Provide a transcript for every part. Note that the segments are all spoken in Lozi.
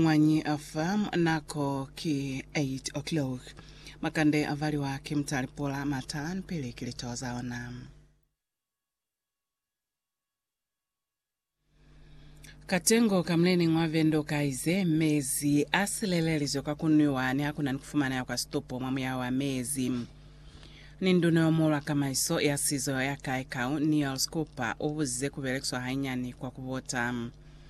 Mwañi afa nako ki 8 o'clock. Makande avaliwa ki mutali pula matan pili ki lito zaona. Katengo ka muleneñi wa vendo ukaize, Mezi a silelelizwe kwa kunwiwa ni hakuna ni kufumaneha kwa situpo mwa muyaho wa mezi. Ni nduna yomuhulu wa kamaiso ya sizo ya Kaikau, Niels Cooper, ubuzize kubelekiswa hainyani kwa kubota.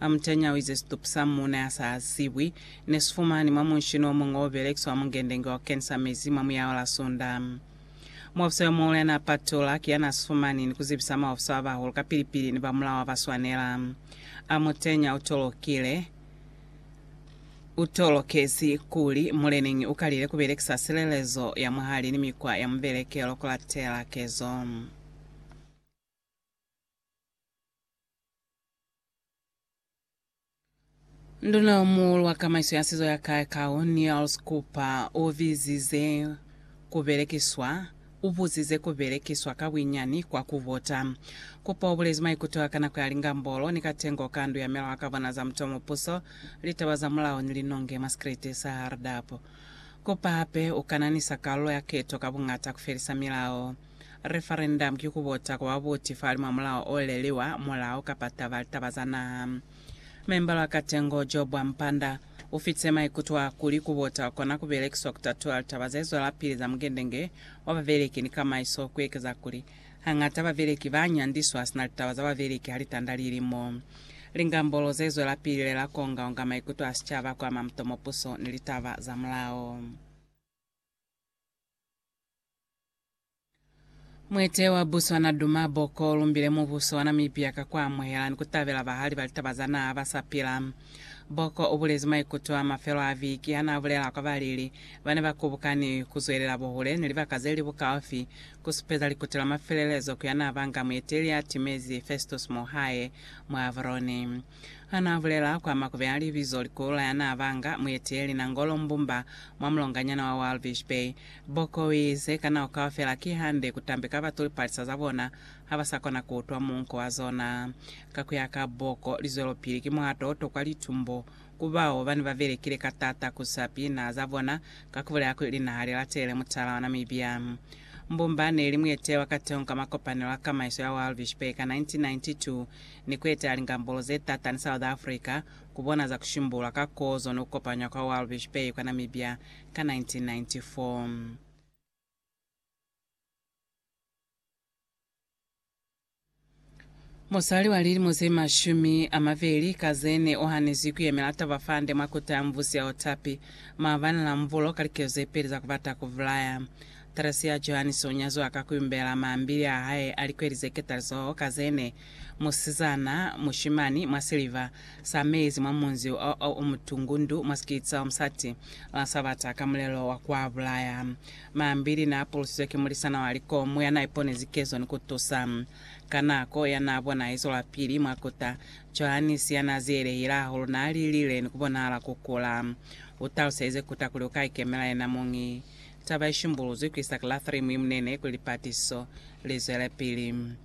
Amutanya uize situpu sa muuna ya sa zibwi ne si fumanwi mwa munshini o muñwi o belekiswa mungendenge wa kensa mezi mwa muyaho la Sunda. Muofisa yo muhulu ya n'a patulula ki ya n'a si fumani ni ku zibisa maofisa ba bahulu kapili-pili ni ba mulao wa ba swanela. Amutanya u tolokile, u tolokezi kuli muleneñi u kalile ku belekisa silelezo ya mwahali ni mikwa ya mubelekelo ku latela kezo. Nduna yo muulu wa kamaiso ya sizo ya Kaekau, Niels Cooper, u bizize ku belekiswa u buzize ku belekiswa ka buinyani kwa ku vota. Cooper u bulezi maikuto a ka nako ya lingambolo ni katengo ka Ndu ya Melao ka bona za Mutuo Mupuso, litaba za mulao ni linonge mwa sikriti sa Hardap. Cooper hape u kananisa kalulo ya keto ka bungata ku felisa milao. Referendamu ki kubota kwa babuti falimwa mulao oleliwa mulao kapa taba litaba za naha. Memba lwa Katengo Job Ampanda ufitise maikuto a kuli kubota kona kubelekiswa kutatula litaba zezwelapili za mugendenge wa babeleki ni kamaiso kuekeza kuli hañata babeleki banyandiswa sina litaba za babeleki halitanda lilimo lingambolo zezwelapili lela kuongaonga maikuto a sicaba kuama mutomo puso ni litaba za mulao. Mwete wa Botswana Duma Boko ulumbile mubuso wa Namibia ka kuamuhela ni kutabela bahali ba litaba za naha basapila. Boko ubulezi maikuto a mafelo a viki hanaabulela kwa balili bane bakubukani kuzwelela buhule ni libaka zeli bukaufi kusupeza likuto la mafelelezo ku yanaabanga mueteli atimezi Festus Mohae mwa Avroni. Hanaabulela kwa makube a libizo Likula yanaabanga mueteeli Nangolo Mbumba mwa mulonganyana wa Walvis Bay, Bocco o ize, Ka nako kaufela kihande kutambe ka batu lipalisa za bona habasakona kuutwa muunko wa zona. Ka kuya ka Bocco, lizwelopili ki muhato o tokwa litumbo ku bao bane babelekile ka taata kusa pina za bona ka kubulela kuli linaha lilatele mutala wa Namibia. Mbumba neeli mueteeli wa kateho ka makopanelo a kamaiso ya Walvis Bay ka 1992. ni ku etela lingambolo ze t'ata ni South Africa ku bona za ku shimbulula ka kozo ni ku kopanywa kwa Walvis Bay kwa Namibia ka 1994. Musali wa lilimo ze mashumi a mabeli ka ze ne o hanizwi ku yemela taba fa nde mwa kota ya mubusi ya Otapi, maabani la Mvulo, ka likezo ze peli za ku bata ku bulaya. Teresi ya Johannes o nyaziwa ka ku yumbela mambili a hae a likweli ze ketalizoho ka ze ne Musizana, mushimani, mwa siliva sa mezi mwa munzi o, o, o mutungu, ndu mwa sikiti sa omusati, la Sabata, ka mulelo wa kwa bulaya. Mambili naa pulusizwe ki mulisana wa likomu ya naa iponezi kezo ni ku tusa. Ka nako ya naa bona izo lwa pili mwa kota, Johannes ya naa zielehile hahulu naa lilile ni ku bonahala ku kula. U taluselize kota kuli u ka ikemela yena muñi. Taba i shimbuluzwi ku isa ki la 3 mwi munene kuli lipatiso li zwelepili.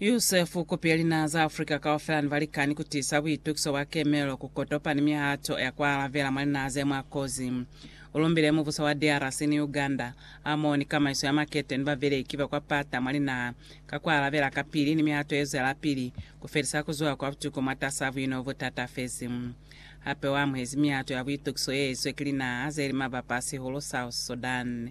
Yusefu, Kupi ya linaha za Afrika kaufela ne ba likani ku tiisa buitukiso bwa kemelo ku kotopa ni mihato ya ku alabela mwa linaha ze mwa kozi. U lumbile mubuso wa DRC ni Uganda ha moho ni kamaiso ya makete ni babeleki ba kwa pata mwa linaha ka ku alabela kapili ni mihato ye zwelapili ku felisa ku zuha kwa butuku mwatas'a buino bo tatafezi. Hape u amuhezi mihato ya buitukiso ye izwe ki linaha ze li mabapa a sihulu South Sudan.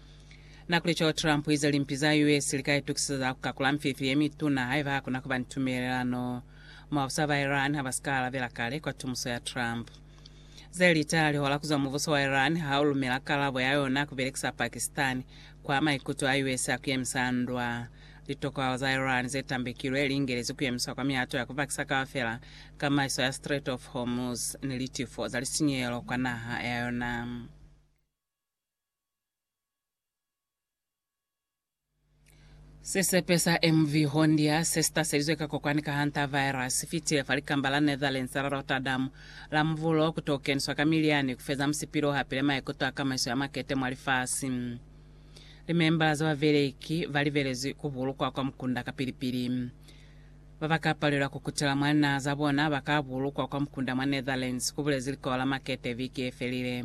Na kuli co Trump uize limpi za US li ka itukisisa za ku kakula mfifi ye mituna haiba ha kuna kuba ni tumelelano. Mwabusa ba Iran ha ba si ka alabela kale kwa tumuso ya Trump. Ze li ta lihola ku zwa mubuso wa Iran ha u lumela kalabo ya yona ya ku belekisa Pakistan kwa maikuto a US a ku yemisa ndwa. Litokohalo za Iran ze tambekilwe li ingelezi ku yemiswa kwa mihato ya ku pakisa kaufela kamaiso ya Strait of Hormuz ni litifo za lisinyehelo kwa naha ya yona. Sisepe sa MV Hondia se si taselizwe ka kokwani ka hantavirus si fitile fa likamba la Netherlands la Rotterdam la Muvulo ku t'o keniswa ka milyani ku feza musipilo hape le maikuto a kamaiso ya makete mwa lifasi. Limembala za babeleki ba libelezwi ku bulukwa kwa mukunda kapili-pili. Ba ba ka palelwa ku kutela mwa linaha za bona ba ka bulukwa kwa mukunda mwa Netherlands, ku bulezi Likolo la Makete viki ye felile.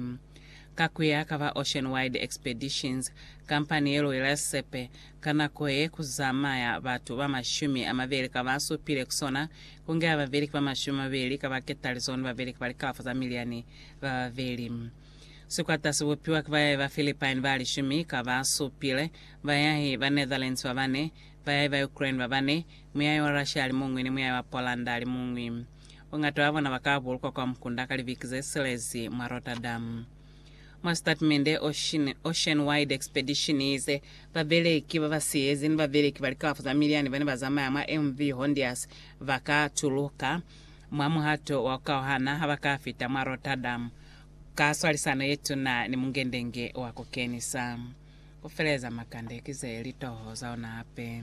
Ka ku ya ka ba Ocean Wide Expeditions, kampani ye lwela sisepe, ka nako ye ku zamaya batu ba mashumi a mabeli ka ba supile ku sona, ku nge a babeli ki ba mashumi a mabeli ka ba ketalizo ni babeli ki ba likalafo za miliani ba babeli. Sikwata si bupiwa ki bayahi ba Philippine ba lishumi ka ba supile, bayahi ba Netherlands ba bane, bayahi ba Ukraine ba bane, muyahi wa Russia a li muñwi ni muyahi wa Poland a li muñwi. Bongata bwa bona baka bulukwa kwa mukunda ka libiki zesilezi mwa Rotterdam. Mwa sitatimende, Ocean, Ocean Wide Expedition iize, Babeleki babasiyezi ni babeleki ba likalafo za miliani bane bazamaya mwa MV Hondias baka tuluka mwa muhato wa kukauhana habaka fita mwa Rotterdam ka swalisano yetuna ni mungendenge wa kukenisa. Kufeleza makande ki ze litoho zaona hape.